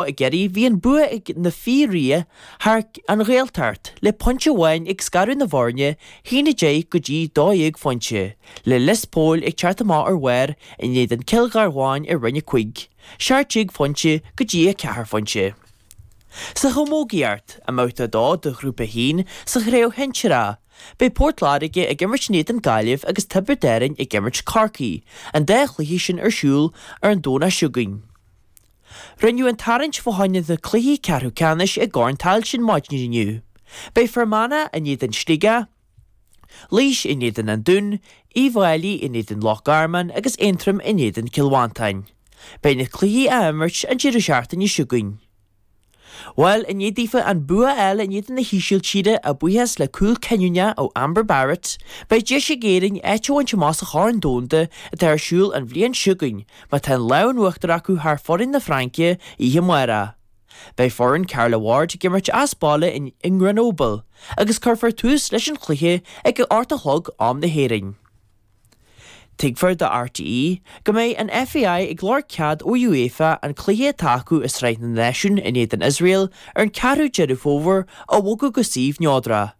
I gCiarraí, bhí an bua ag na Fianna thar An Ghaeltacht le pointe amháin ag scaradh na bhfoirne, 1-10 go dtí 12 phointe, le Lios Póil ag teacht amach ar bharr in éadan Cill Gharbháin i Roinn 5, 17 phointe go dtí 4 phointe. Sa Chamógaíocht, i mBabhta 2 de Ghrúpa 1 sa Chraobh Shinsir A, beidh Port Láirge ag imirt in éadan Gaillimh agus Tiobraid Árainn ag imirt Corcaigh, an dá chluiche sin ar siúl ar an Domhnach seo chugainn. Rinneadh an tarraingt fá choinne na cluichí ceathrú ceannais i gCorn Tailteann maidin inniu. Beidh Fear Manach in éadan Sligeach, Laois in éadan An Dún, Uíbh Fháilí in éadan Loch Garman agus Aontroim in éadan Cill Mhantáin. Beidh na cluichí á imirt an deireadh seachtaine seo chugainn. Bhuel, i ndiaidh daofa an bua a fháil in éadan na hÍsiltíre a bhuíochas le cúl cinniúna ó Amber Barrett, beidh deis ag Éirinn áit a bhaint amach sa Chorn Domhanda atá ar siúl an bhliain seo chugainn má tá an lámh in uachtar acu thar foireann na Fraince oíche amárach. Beidh foireann Carla Ward ag imirt as baile i nGrenoble agus cuirfear tús leis an chluiche ag a hocht a chlog am na hÉireann. Tuigtear do RTÉ go mbeidh an FAI ag lorg cead ó UEFA an cluiche atá acu i Sraith na Náisiún in éadan Iosrael ar an 4ú Deireadh Fómhair a bhogadh go suíomh neodrach.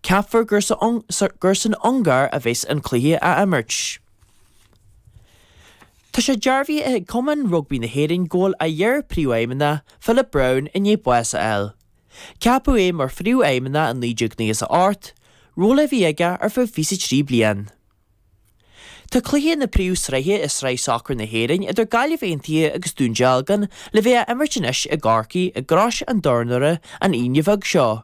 Ceaptar gur san Ungáir a bheas an cluiche á imirt. Tá sé dearbhaithe ag Cumann Rugbaí na hÉireann go bhfuil a iar-phríomhfheidhmeannach, Philip Brown, i ndiaidh bás a fháil. Ceapadh é mar Phríomhfheidhmeannach i 1998, ról a bhí aige ar feadh 23 bliain. Tá cluiche na Príomhshraithe i Sraith Sacair na hÉireann idir Gaillimh Aontaithe agus Dún Dealgan le bheith á imirt anois i gCorcaigh i gCrois an Tornóra an Aoine bheag seo.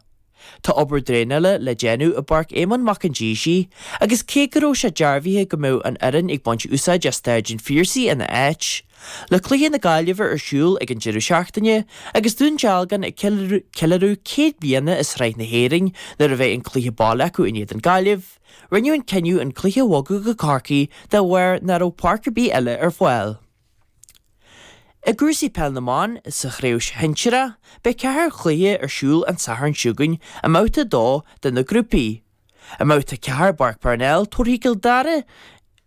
Tá obair draenála le déanamh i bPáirc Éamonn Mhic an Déisigh agus cé go raibh sé dearbhaithe go mbeadh an fhoireann ag baint úsáid as Staid an Phiarsaigh ina áit, Le cluiche na Gaillimhe ar siúl ag an deireadh seachtaine, agus Dún Dealgan ag ceiliúradh céad bliain i Sraith na hÉirinn nuair a bheidh an cluiche baile acu in éadan Gaillimh, rinneadh an cinneadh an cluiche a bhogadh go Corcaigh de bharr nach raibh páirc ar bith eile ar fáil. I gcúrsaí Peil na mBan, sa chraobh shinsir, beidh ceithre chluiche ar siúl an Satharn seo chugainn i mbabhta a dó de na grúpaí, I mbabhta a ceathair i bPáirc Parnell, tabharfaidh Cill Dara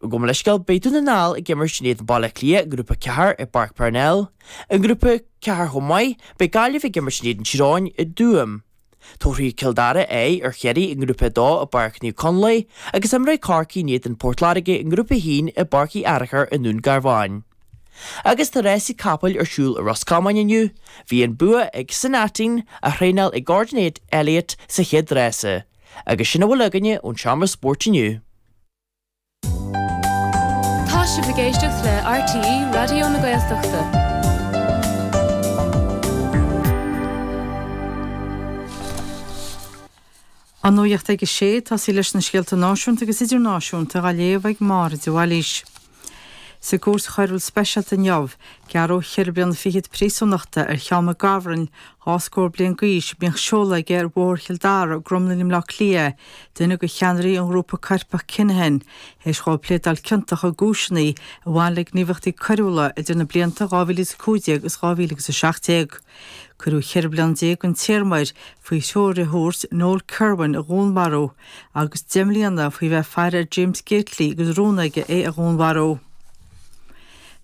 gabh mo leithscéal, beidh Dún na nGall ag imirt in éadan Baile Átha Cliath i ngrúpa 4 i bPáirc Parnell. I ngrúpa 4 chomh maith, beidh Gaillimh ag imirt in éadan Tír Eoghain i dTuaim. Tabharfaidh Cill Dara aghaidh ar Chiarraí i ngrúpa 2 i bPáirc Naomh Conláed agus imreoidh Corcaigh in éadan Port Láirge i ngrúpa 1 i bPáirc Uí Fhearachair i nDún Garbháin. Agus tá rásaí capall ar siúl i Ros Comáin inniu, bhí an bua ag San Aitinn á thraenáil ag Gordon Elliott sa chéad rása. Agus sin a bhfuil againne ón Seomra Spóirt inniu. Tá sibh ag éisteacht le RTÉ Raidió na Gaeltachta. An Nuacht ag a sé, tosaí leis na scéalta náisiúnta agus idirnáisiúnta dá léamh ag Máire de Bhailís. Sa gCúirt Choiriúil Speisialta inniu, gearradh ceithre bliana fichead príosúnachta ar Sheán Mac Gabhráin, dhá scór bliain d'aois, a mbíodh seoladh aige ar Bhóthar Chill Dara i gCromghlinn i mBleá Cliath, duine de cheannairí an ghrúpa coirpeach Kinahan, théis dhó pléadáil ciontach i gcúiseanna a bhain le gníomhaíochtaí coiriúla idir na blianta 2015 agus 2017. Cuireadh cheithre bliana déag den téarma air faoi threoir a thabhairt Noel Kirwan a dhúnmharú agus deich mbliana faoi bheith ag faire ar James Gately agus rún aige é a dhúnmharú.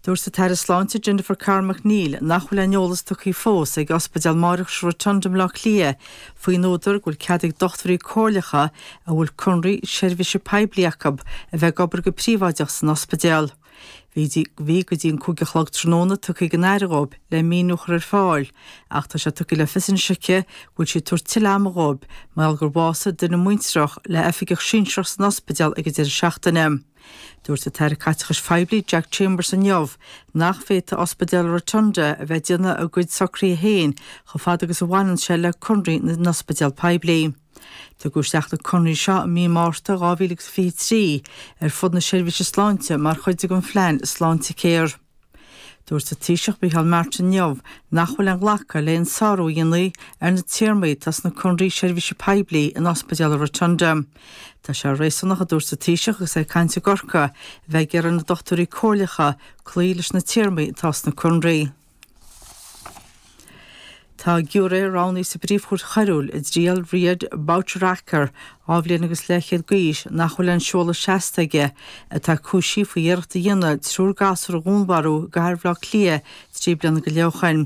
Dúirt an tAire Sláinte Jennifer Carroll MacNeill nach bhfuil aon eolas tugtha fós ag Ospidéal Máithreachais an Rotunda i mBleá Cliath faoin údar go bhfuil cead ag dochtúirí comhairleacha a bhfuil conraí seirbhíse poiblí acu a bheith ag obair go príobháideach san ospidéal. Bhí go dtí an cúig a chlog tráthnóna tugtha ag an Aire dhóib le míniú a chur ar fáil, ach tá sé tugtha le fios anois aici go bhfuil sí ag tabhairt tuilleadh ama dhóib mar gheall gur bhásaigh duine muintreach le oifigeach sinsearach san ospidéal ag an deireadh seachtaine. Dúirt an tAire Caiteachais Phoiblí Jack Chambers inniu nach bhféadfadh Ospidéal Rotunda a bheith ag déanamh a gcuid socruithe féin chomh fada agus a bhaineann sé le conraí na n-ospidéal poiblí. Tugadh isteach na conraí seo i mí Márta 2023 ar fud na seirbhíse sláinte mar chuid den phlean Sláintecare. Dúirt an Taoiseach Micheál Martin inniu nach bhfuil aon ghlacadh le haon sárú a dhéanamh ar na téarmaí atá sna conraí seirbhíse poiblí in Ospidéal an Rotunda. Tá sé réasúnach, a dúirt an Taoiseach agus é ag caint i gCorcaigh, a bheith ag iarraidh ar na dochtúirí comhairleacha cloí leis na téarmaí atá sna conraí. Tá giúiré roghnaithe sa bPríomh-Chúirt Choiriúil i dtriail Riad Bouchaker, dhá bhliain agus leathchéad d'aois nach bhfuil aon seoladh seasta aige, atá cúisithe faoi iarracht a dhéanamh triúr gasúr a dhúnmharú i gcathair Bhaile Átha Cliath trí bliana go leith ó shin.